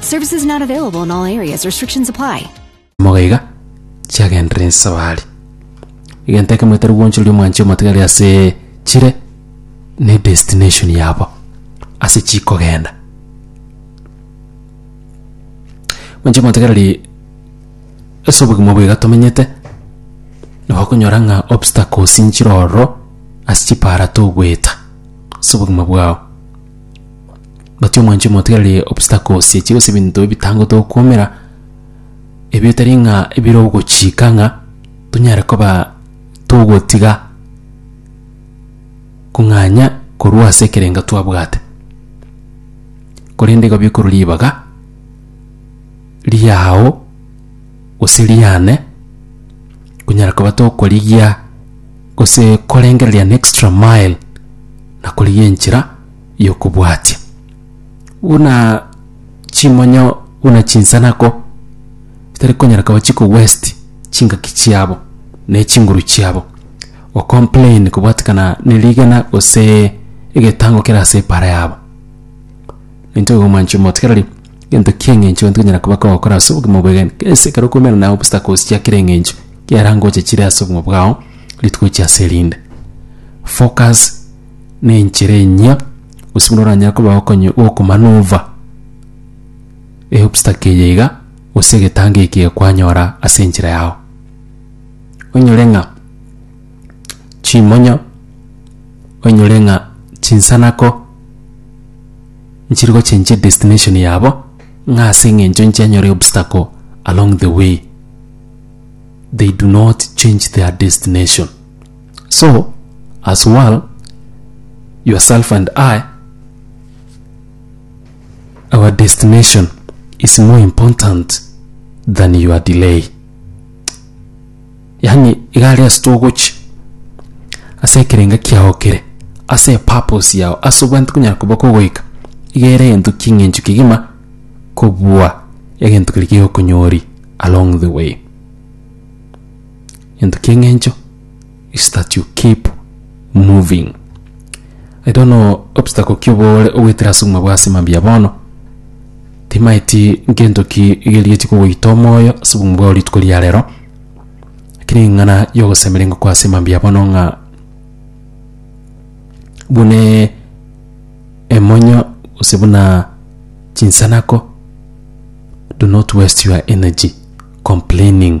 Services not available in all areas. Restrictions apply. Moga iga chiagenderere ensabari. Egento ekemo etari gwanchoria omwanche omotigari ase chire ne destination yabo ase chikogenda. Mwanche omotigareri ase obogima obo iga tomenyete nabo okonyora ng'a obstacles nchire ororo ase chipara togoeta ase obogima bwao. Gati omwanchwa omotigareri obstacles echi gose ebinto ebitangote gokuomera, ebi etari ng'a ebire ogochika ng'a tonyare koba togotiga kong'anya korwa ase ekerengo twabwate. Korende igo bikorwa ribaga riago gose riane konyara koba tokorigia gose korengereria an extra mile na korigia enchera y'okobwatia, buna chimonyo, buna chinsanako chitari konyara koba chikowaste chingaki chiabo na echinguru chiabo, ocomplain kobwatekana ne rigena gose egetango kere ase epara yabo. Nintwe igo mwanchwa motigereri egento ki'eng'encho gento konyara koba kogokora ase obogima bwegen gese ekero okoumera na obstacles chia kera eng'encho, kiarangoche chire ase obogima bwao rituko chia ase erinde. Focus nenchera enyia, gose buna oranyare koba okonye gokomaneuver eobstacle eye iga, gose egetango eke iga kwanyora ase enchera yago. Onyore ng'a chimonyo, onyore ng'a chinsanako nchiri gochenchia edestination yabo, ng'a ase eng'encho nchianyora eobstacle along the way, they do not change their destination. So, as well, yourself and I, our destination is more important than your delay. Yani, igare ase togochi, ase ekerenga kiao kere, ase purpose yao, ase obwanete konyara koba kogoika, igere egento king'encho kegima kobua egento keria kegokonyori along the way. Gento kieng'encho is that you keep moving. I don't know obstacle ki obore ogwetire ase obogima bwa ase mambia bono. Timaeti gento ki gerigetie kogoita omoyo ase obogima bwao rituko ria rero. Lakini eng'ana yogosemeri ngokoa ase mambia bono ng'a bune emonyo gose buna chinsanako do not waste your energy complaining